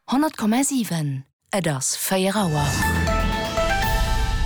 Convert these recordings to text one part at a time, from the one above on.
100,7 Et ass 4 Auer.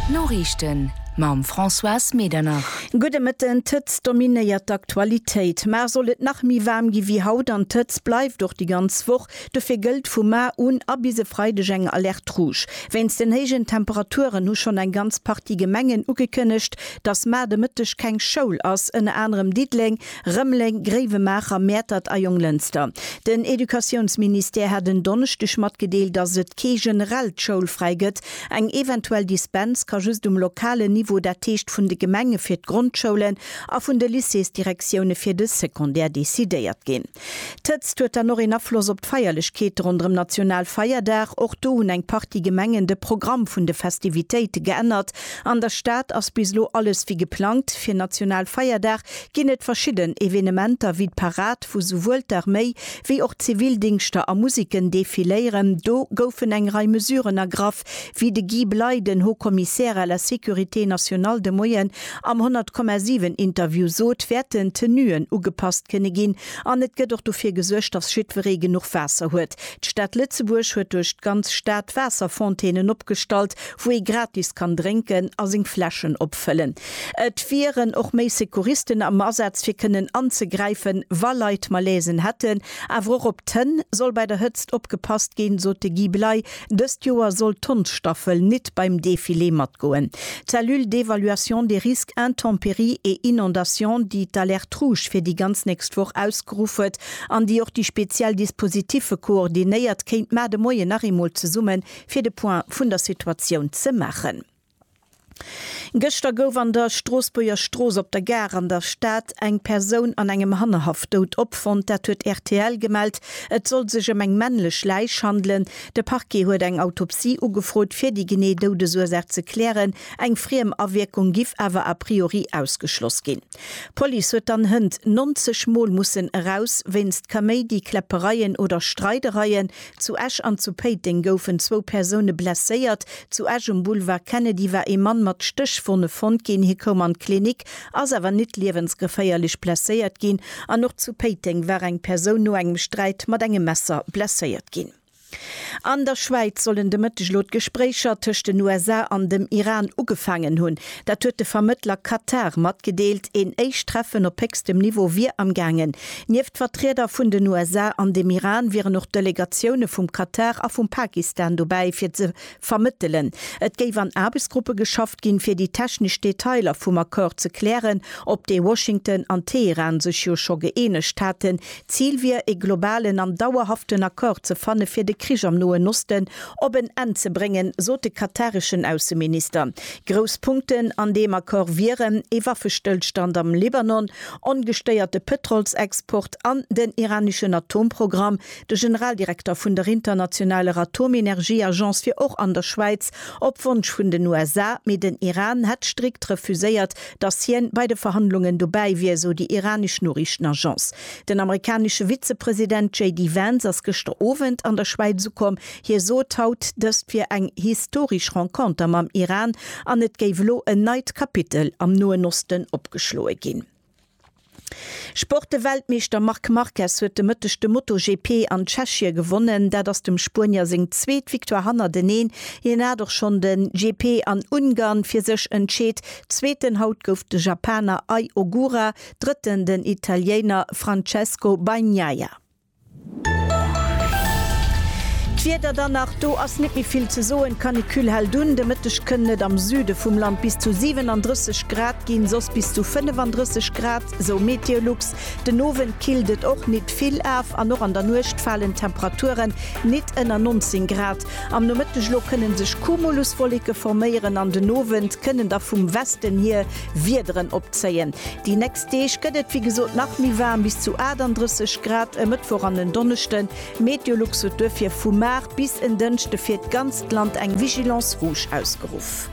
D'Noriichten mam Françoise Medernach. Gudde Mëtten. D'Hëtzt dominéiert d'Aktualitéit. Mar soll et nach méi waarm gi wéi haut an d'Hëtzt bleift och déi ganz Woch. Dofir gëllt vu mar un a bis e Freideg eng Alerte rouge. Wéinst den héijen Temperaturen hu schonn eng ganz Partie Gemengen ugekënnegt, dass mar de Mëtteg keng Schoul ass. Ënner anerem Diddeleng, Rëmeleng, Gréiwemaacher, Mäertert a Jonglënster. Den Educatiounsministère hat en Donneschdeg matgedeelt, datt et kee generellt Schoulfräi gëtt. Eng eventuell Dispens ka just um lokalen Niveau, dat heescht vun de Gemenge fir d'Grondschoulen a vun de Lycéesdirektioune fir de Secondaire, decidéiert ginn. D'Hëtzt huet dann och een Afloss op d'Feierlechkeete ronderëm Nationalfeierdag. Och do hunn eng Partie Gemengen de Programm vun de Festivitéite geännert. An der Stad ass bis elo alles wéi geplangt. Fir Nationalfeierdag ginn et verschidden Evenementer wéi d'Parad, wou souwuel d'Arméi wéi och d'Zivildingschter a Musiken defiléieren. Do goufen eng Rei Mesuren ergraff, wéi de Guy Bley, den Haut Commissaire à la sécurité nationale de Moien am 100,7 Interview sot, wäerten d'Tenuen ugepasst kënne ginn an et gëtt och dofir gesuergt, datt jiddweree genuch Waasser huet. D'Stad Lëtzebuerg huet duerch d'ganz Stad Waasserfontänen opgestallt, wou ee gratis kann drénken a seng Fläschen opfëllen. Et wieren och méi Secouristen am Asaz fir kënnen anzegräifen, wa Leit Malaise'en hätten. Awer och op d'Hënn soll bei der Hëtzt opgepasst ginn, sot de Guy Bley. Dëst Joer soll d'Hondsstaffel nit beim Defilé matgoen. D'Cellule d'évaluation des risques intempéries et inondations, déi d'Alerte rouge fir déi ganz nächst Woch ausgeruff huet an déi och déi speziell Dispositiffe koordinéiert, kéint mar de Moien nach eemol zesumme fir de Point vun der Situatioun ze maachen. Gëschter gouf an der Stroossbuerger Strooss op der Gare an der Stad eng Persoun an engem Hannerhaff dout opfonnt. Dat huet rtl gemellt. Et soll sech ëm eng männlech Läich handelen. De Parquet huet eng Autopsie ugefrot, fir déi genee Doudesursaach ze klären. Eng friem Awierkung giff awer a priori ausgeschloss ginn. D'Police huet dann Hënt 90 Mol mussen eraus wéinst Kaméidi, Kläppereien oder Streidereien. Zu Esch an zu Péiteng goufen zwou Persoune blesséiert. Zu Esch um Boulevard Kennedy war ee Mann mat Stéchwonne fonnt ginn. Hie koum an d'Klinik, ass awer nit liewensgeféierlech blesséiert ginn. An och zu Péiteng war eng Persoun no engem Sträit mat engem Messer blesséiert ginn. An der Schwäiz sollen de Mëtteg elo d'Gespréicher tëscht den USA an dem Iran ugefaangen hunn. Dat huet de Vermëttler Katar matgedeelt. Een éischt Treffen op héchstem Niveau wier am gaangen. Nieft Vertrieder vun den USA an dem Iran wieren och Delegatioune vum Katar a vum Pakistan dobäi, fir ze Vermëttelen. Et géif an Aarbechtsgruppe geschafft ginn, fir déi technesch Detailer vum Accord ze klären, op dee Washington an Teheran sech jo scho gëeenegt haten. D'Zil wier, e globalen an dauerhaften Accord ze fanne fir de Krich am Noen Osten op en Enn ze bréngen, sot de katareschen Ausseminister. Grouss Punkten an deem Accord wieren, ee Waffestëllstand am Libanon, ongestéierte Pëtrolsexport an den iraneschen Atomprogramm, De Generaldirekter vun der internationaler Atomenergieagence wier och an der Schwäiz, op Wonsch vun den USA, mee den Iran hätt strikt refuséiert, datt hien bei de Verhandlungen dobäi wier, sou déi iranesch Noriichtenagence. Den amerikanesche Vizepresident JD Vance ass gëschter Owend an der Schwäiz ukomm. Hie sot haut, dëst wier eng historesch Renconter mam Iran an et géif elo en neit Kapitel am Noen Osten opgeschloe ginn. Sport-Weltmeeschter Marc Marquez huet de Mëtteg de MotoGP an Tschechie gewonnen. Dat ass dem Spuenier seng zweet Victoire hannerteneen. Hien hat och schonn de GP an Ungarn fir sech entscheet. Zweeten haut gouf de Japaner Ai Ogura, drëtten den Italiener Francesco Bagnaia. D'Wieder dann nach, do ass net méi vill ze soen, d'Canicule hält un. De Mëtteg kënnen et am Süde vum Land bis zu 37 Grad ginn, soss bis zu 35 Grad, sou Meteolux. Den Owend killt et och nit vill af an och an der Nuecht falen d'Temperaturen nit ënner 19 Grad. Am Nomëtteg elo kënnen sech Cumuluswolleke forméieren an den Owend kënnen da vum Westen hier Wiederen opzéien. Déi nächst Deeg gëtt et wéi gesot nach méi waarm, bis zu 38 Grad e Mëttwoch an en Donneschden. Meteolux huet duerfir vu mar bis en Dënschde fir d'ganzt Land eng Vigilance rouge ausgeruff.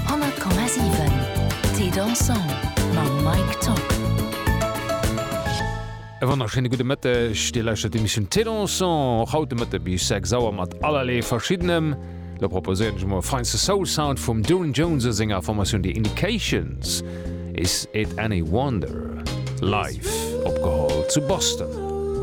100,7 T-Dancen mam Mike Tock. E wonnerschéine gudde Mëtteg, Dir lauschtert d'Emissioun Thé Dansant, och haut de Mëtte bis 6 Auer mat allerlee Verschiddenem. Lo proposéieren ech emol e feinste Soul-Sound vum Doon Jones a senger Formatioun The Indications, Is It Any Wonder? Live opgeholl zu Boston.